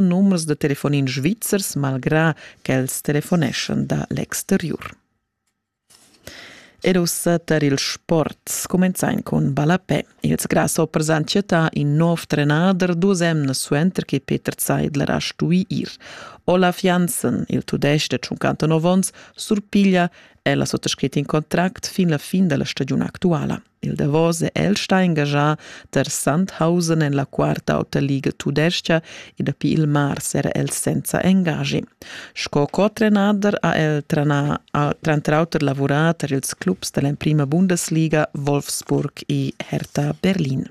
numers da telefonin svizzers malgrà ch'els telefoneschan da l'exteriur. Ed ussa tar il sport comenzain cun ballapè. Ils grasshoppers han chattà in nov trenader dus emnas suenter che Peter Zeidler ha stui ir. Olaf Janssen, il tudesc da 59 onns, surpiglia el ha sottoscrit in contract fin la fin della stagione attuala. Il davos è el stà engaschà tar Sandhausen en la quarta ota liga tudestga e dapi il mars era el senza engaschi. Sco co-trenader ha el tranà, ha tranter auter lavurà tar ils clubs da l'emprima Bundesliga Wolfsburg e Hertha Berlin.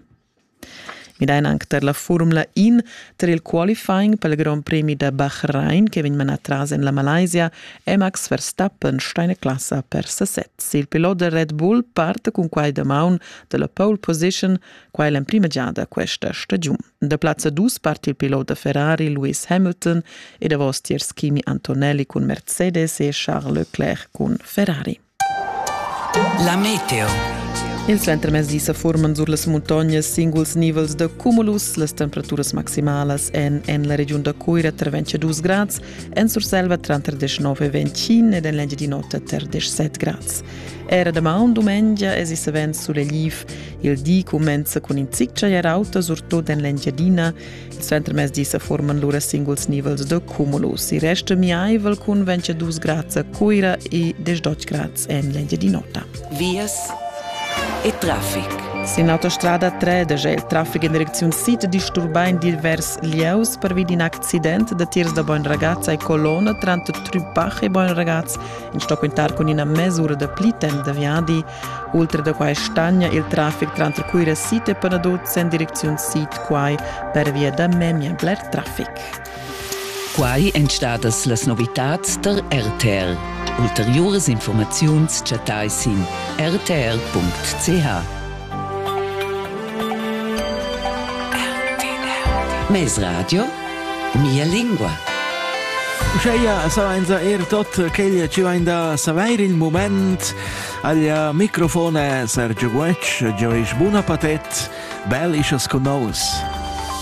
Midain anc tar la Furmla In tar il qualifying pel Grond Premi da Bahrain che vegn manà tras en la Malaysia è Max Verstappen stà in classa per sesez. Il pilot da Red Bull part cun quai damaun da la pole position, quai l'emprima giada questa stagiun. Da plazza 2 part il pilot da Ferrari Lewis Hamilton e davos tier Schimi Antonelli cun Mercedes e Charles Leclerc cun Ferrari. La meteo. Il suentermezdi sa furman sur las muntognas singuls nivels da cumulus. Las temperaturas maximalas èn en la regiun da Cuira tra 22 grads, en Surselva tranter 19 e 25 ed en l'Engiadin'Ota tar 17 grads. Era damaun dumengia es i savens sulegliv. Il di cumenza cun in zic chagliar auta, surtut en l'Engiadina. Suentermezdi sa forman lura singuls nivels da cumulus. Il resto miaivel cun 22 grads a Cuira e 18 grads en l'Engiadin'Ota. Vias e traffic. Sin l'autostrada 3 daja il traffic en direcziun sid disturbà in divers lieus pervi d'in accident da tirs da Beinragaz e Colonna tranter Trupach e Beinragaz, in sto quintar cun ina mesura da pli temp da viadi Ultra da quai stagna il traffic tranter Cuira Sid e Panaduz en direcziun sid quai pervia da memia bler traffic. Quai èn stadas las novitads tar RTR. Ulteriuras informaziuns chattai sin rtr.ch. Mesradio, mia lingua. Uscheia sainza er tot quel chi vain da savair il moment Aglia microfon è Sergio Guetg, Gio isch buna patet, bel ischas con nous.